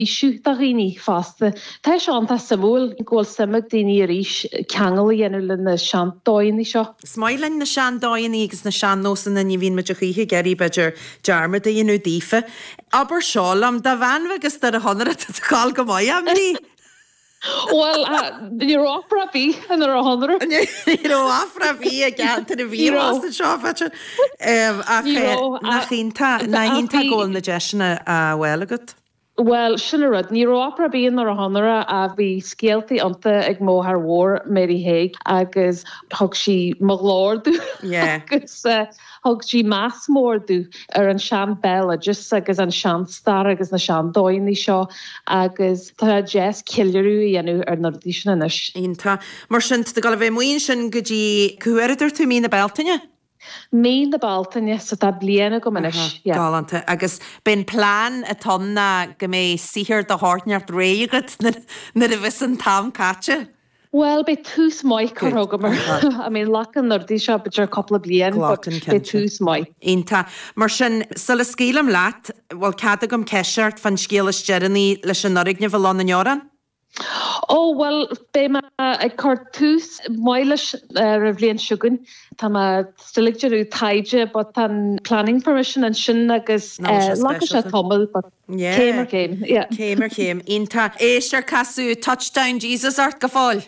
is do dhaoine fásta. Tá sé an, tá sé suimiúil go bhfuil suim ag daoine arís ceangal a dhéanamh leis na sean-dóigheannaí seo. Is maith linn na sean-dóigheannaí agus na sean-nósanna, ní bhíonn muid a choíche ag iarraidh, b'fhéidir, dearmad a dhéanamh daofa. Abair seo liom, de mheán agus de do shaothar, tá do cháil go maith anois Bhuel, ní raibh opera ar bith ann ar an tSeanra. Ní raibh opera ar bith i gceantar a bhí i bhfás anseo, b'fhéidir. Ach, nach iontach, nach iontach go bhfuil na deiseanna á bhfáil agat. Bhuel, sin an rud. Ní raibh opera ar bith ann ar an tSeanra ach bhí scéaltaí iontach ag mo mháthair mhór, Mary Hague, agus thug sí mo ghlór domh agus thug sí meas mór domh ar an sean béaloideas agus an sean stair agus na sean dóigheannaí seo agus tá sé deas ceiliúradh a dhéanamh ar na rudaí sin anois. Iontach. Mar sin, tá tú ag dul a bheith amuigh ansin go dtí, cá huair a dúirt tú, mí na Bealtaine? Mí na Bealtaine, so tá bliain agam anois. Aha, yeah. Galánta. Agus ab é an plean atá ann ná go mbeidh saothar de chineál inteacht réidh agat nuair a bheas an t-am caite? Bhuel, beidh tús maith curtha agam ar, I mean, glacann na rudaí seo b'fhéidir cúpla bliain, but Glacann, cinnte. beidh tús maith. Iontach. Mar sin, sula scaoilim leat, bhfuil cead agam ceist ort fán scéal is deireanaí leis an fhoirgneamh i nDún na nGall? Ó, bhuel, beidh mé ag cur tús maith leis ar an bhliain seo chugainn. Tá mé still ag déanamh taighde but tá an planning permission ansin agus glacfaidh sé tamall but céim ar chéim, yeah. Céim ar chéim, iontach. Éist ar casadh Touchdown Jesus ort go fóill!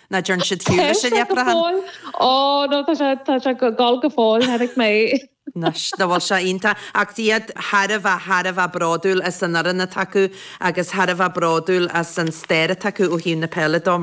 Ná deireann siad fiú leis an leipreachan. Ó no tá sé tá sé go go fóill tháinig mé. Anois nach bhfuil sé iontach ach bhí iad thar a bheith thar a bheith bródúil as an fhoireann atá acu agus thar a bheith bródúil as an stair atá acu ó thaobh na peile de.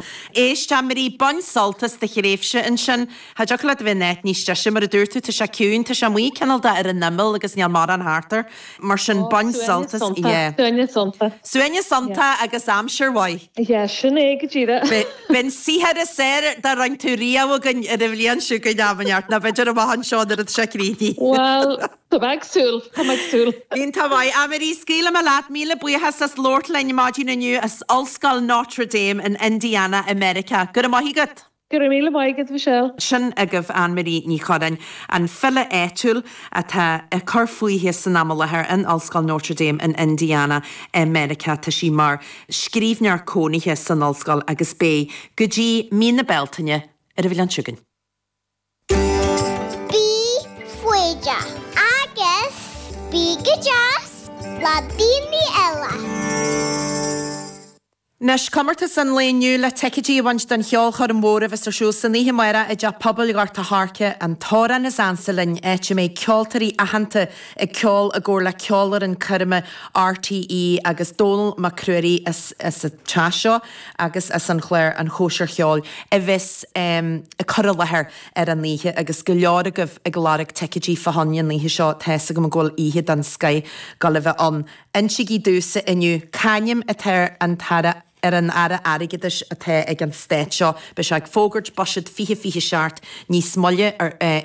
Éist, a Marie, bain sult as do thréimhse ansin. Cha dtiocfadh leat a bheith in áit níos deise, mar a dúirt tú, tá sé ciúin, tá sé amuigh cineál de ar an imeall agus níl morán thart air. Mar sin Oh, bain suaimhneas sult as, yeah. síocháin, suaimhneas síocháin. Suaimhneas síocháin agus aimsir mhaith. Yeah, sin é go díreach. Beidh an saothar is fhearr dá ndearn tú riamh againn ar an bhliain seo chugainn, am inteacht, nó b'fhéidir amach anseo nuair atá sé críochnaithe. Bhuel, tá mé ag súil, tá mé ag súil. Iontach maith. Anne-Marie, scaoilfidh mé leat, míle buíochas as labhairt linn maidin inniu as Ollscoil Notre Dame in Indiana i Meiriceá. Go raibh maith agat. Go raibh míle maith agat, Michelle. Sin agaibh Annemarie Ní Churreáin, an file áitiúil atá ag cur fúithi san am i láthair in Ollscoil Notre Dame in Indiana i Meiriceá. Tá sí mar scríbhneoir cónaithe san ollscoil agus beidh go dtí mí na Bealtaine. Ar an bhliain seo chugainn. Bí foighdeach agus bí go deas le daoine eile. Anois, comórtas an lae inniu le ticéidí a bhaint don cheolchoirm mhór a bheas ar siúl san oíche amáireach i dTeach Pobail Ghort a' Choirce, An tAmhrán is Ansa Linn, áit a mbeidh ceoltóirí aitheanta ag ceol i gcomhar le ceolfhoireann coirme RTÉ agus Dónall Mac Ruairí as an teach seo. agus as an chlár An Chóisir Cheoil a bheas ag cur i láthair ar an oíche agus go leor agaibh ag lorg ticéidí fá choinne an oíche seo tá's agam go bhfuil oíche den scoth ag gabháil a bheith ann. Insigí domhsa inniu c'ainm atá ar an Aire Airgeadais atá ag an Stát seo. Beidh sé ag fógairt buiséad 2027 níos moille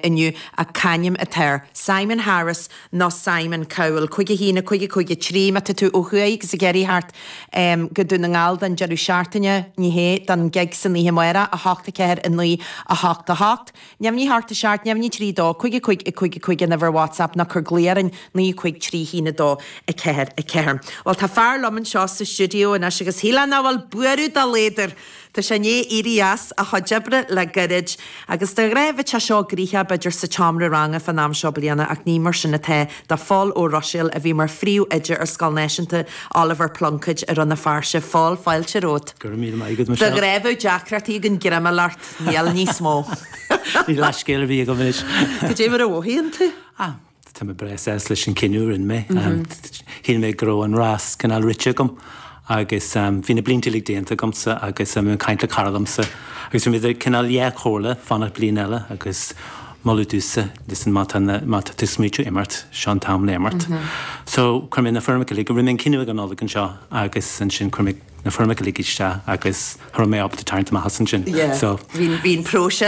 inniu ach c'ainm atá air. Simon Harris. nó Simon Cowell. Cúig a hAon, a Cúig a Cúig a Trí, má tá tú ó thuaidh agus ag iarraidh theacht go Dún na nGall don deireadh seachtaine, ní hea, don gig san oíche amárach, a hOcht, a Ceathair, a Naoi, a hOcht, a hOcht. Neamhní a hocht a seacht, neamhní trí dó, Cúig a Cúig a Cúig a Cúig an uimhir WhatsApp nó cuir glao orainn, naoi a cúig trí haon a dó a ceathair a ceathair. Bhuel, tá fear liom anseo sa stiúideo anois agus shílfeá nach bhfuil buaireamh dá laghad air, Tá sé i ndiaidh éirí as a chuid oibre le gairid, agus de ghnáth bheadh sé seo gnoitheach, b'fhéidir, sa tseomra ranga fán am seo bliana, ach ní mar sin atá do Phól Ó Ruiséil, a bhí mar phríomh-oide ar Scoil Náisiúnta Oliver Plunkett i Rann na Feirste. Phól, fáilte romhat. Go raibh míle maith agat, Michelle. De ghnáth bheadh deacrachtaí againn greim a fháil ort, níl níos mó. Níl leithscéal ar bith agam anois. Cad é mar a mhothaíonn tú? Tá mé breá sásta leis an cinneadh a rinne mé. Shíl mé go raibh an rás cineál rite agam agus bhí na blianta uilig déanta agamsa agus bhí mé ag caint le cara liomsa agus bhí muid cineál idir dhá chomhairle fanacht bliain eile agus moladh domhsa, listen má tá na, má tá tú smaoitiú imeacht, seo an t-am le imeacht. So chuir mé na foirmeacha uilig, rinne mé an cinneadh ag an Nollaig anseo agus ansin chuir mé na foirmeacha uilig isteach agus cha raibh mé ábalta tarraingt amach as ansin. Yeah, so bhí an próiseas.